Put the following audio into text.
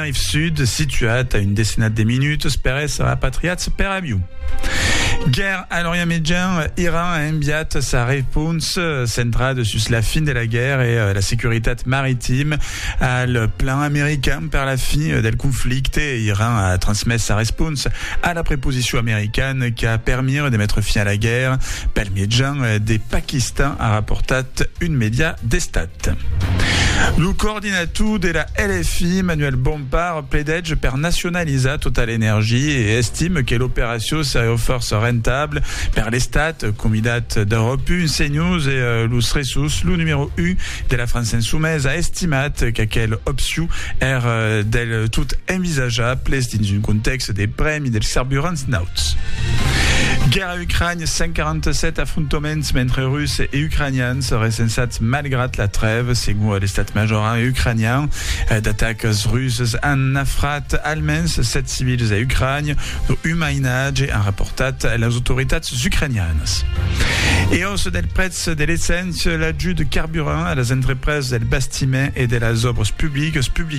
Tenerife Sud, situat a un decenat de minutas per èsser apatriats per avion. Guèrra a l'Orient Mejan, Iran a enviat sa repons centrada sus la fin de la guèrra e la securitat maritima al plan american per la fin del conflicte. Iran a transmés sa repons a la preposicion americana qu'a permire de metre fin a la guèrra pel mejan de Pakistan, a raportat un media d'estat. Lo coordinator de la LFI, Manuel Bompard, pledètge per nacionalizar tota l'energia e estime que l'operacion seriá fòrça rentabla per l'Estat, comidat d'Europe un, CNews e los Ressus. Lo numèro un de la França Insumesa a estimat qu'aquela opcion èr del tot envisajable dins un contèxt de prèmi dels carburants nauts. A Ucrània, 147 afrontaments entre Russes e Ucranians recensats malgrat la trèva, segon l'estat major ucranian. D'atacas rusas an nafrat almens 7 civils a Ucrània, lo un mainatge, an raportat las autoritats ucranianas. E aussa del prètz de l'esséncia, l'ajut de carburant a las entrepresas del bastiment e de las òbras publicas, publica